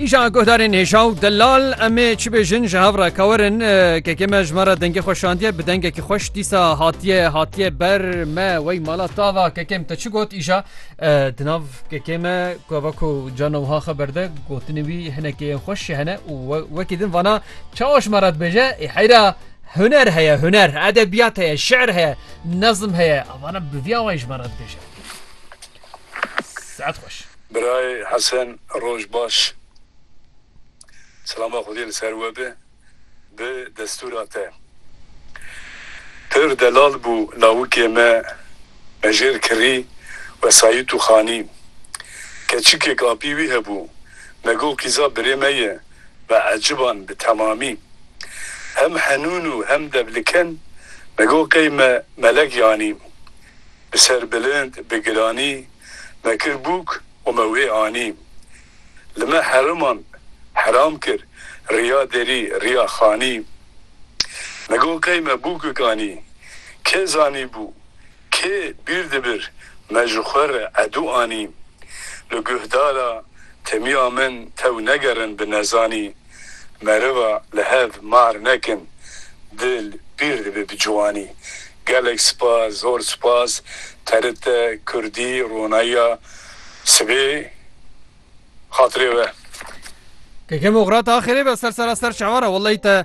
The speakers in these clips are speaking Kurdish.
Îşa guhdarên hêja û delal em ê çi bêjin ji hev re kawerin kekê me ji me re dengê xwe şandiye bi dengekî xweş dîsa hatiye hatiye ber me wey mala tava kekêm te çi got îşa di nav kekê me kuva ku cana wiha xwe berde gotinê wî hinekê yên xweş jî hene û wekî din vana çawa ji me re dibêje ê heyra huner heye huner edebiyat heye şer heye nezm heye avana bi vî awayî ji me re dibêje Saet xweş. Birayê Hesen roj baş. Selama Xwedê li ser we be bi destûra te. Pir delal bû lawikê me Mejêr Kirî wesayît û xanî. Keçikêk apî wî hebû me got qîza birê me ye me eciban bi temamî. Hem henûn û hem devliken me got qey me melek yanî. Bi ser bilind, bi giranî me kir bûk û me wê anî. Li me heriman heram kir, riya derî, riya xanî. Me got qey me bûkik anî, kê zanîbû, kê bîr dibir me ji xwe re edû anî. Li guhdara temiya min tew negerin bi nezanî. Meriva li hev mahr nekin dil pîr dibe bi ciwanî. Gelek spas zor spas TRT Kurdî ronayiya sibê xatirê we. Keke Mugrat axirê be ser sera ser şeva re wellahî te.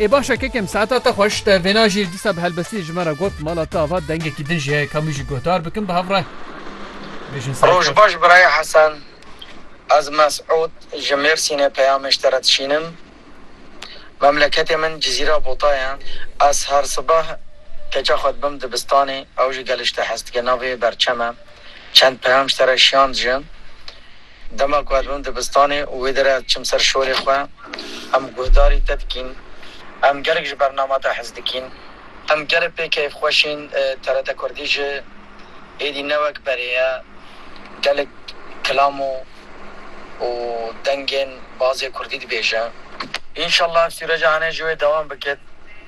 Ê baş e kekem saeta te xweş te vêna jî dîsa bi helbestiyê ji me re got mala te ava dengekî din jî heye ka min jî guhdar bikin bi hev re bêjin saet baş. Roj baş birayê Hesen ez Mesûd ji Mêrsînê peyamê ji te re dişînim memleketê min Cizîra Bota ye ez her sibeh keça xwe dibim dibistanê ew jî gelê ji te hez dike navê berçem e çend peyam ji te re şiyand ji Dema ku ez bûm dibistanê û wê derê ez diçim ser şorê xwe, em guhdarî te dikîn, em gelek ji bernama te hez dikîn, em gelê pê keyfxweş ên, TRT Kurdî ji êdî ne wek berê ye, gelek kilam û û dengên bazê Kurdî dibêje. Înşallah ev sûreca hene ji wê dewam biket,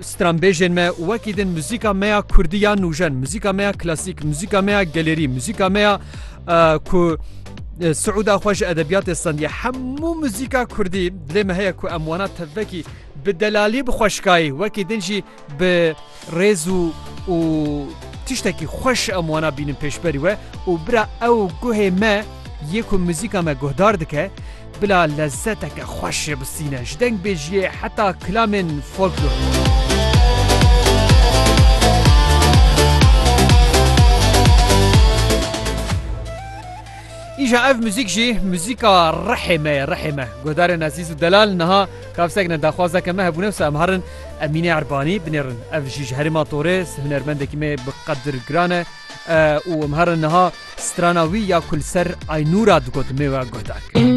stranbêjên me û wekî din muzîka me ya Kurdî ya nûjen, muzîka me ya klasîk, muzîka me ya gelerî, muzîka me ya ku Siûda xwe ji edebiyatê stendiye hemû muzîka Kurdî dilê me heye ku em wana tevvekî bi delalî bi xweşkayî wekî din jî bi Rêz û û tiştekî xweş em wana bînin pêşberî we û bira ew guhê me yê ku muzîka me guhdar dike bila lezzeteke xweş jê bisîne ji dengbêjiyê heta kilamên folklorî. Îja ev muzîk jî muzîka rihê me ye rihê me. Guhdarên ezîz û delal niha kavsek ne daxwazeke me hebûne wisa em harin Emîne Erbanî binêrin. Ev jî ji herêma Torês, hunermendekî me bi qedir giran e û em herin niha strana wî ya ku li ser Aynûra digot mêwe guhdar kir.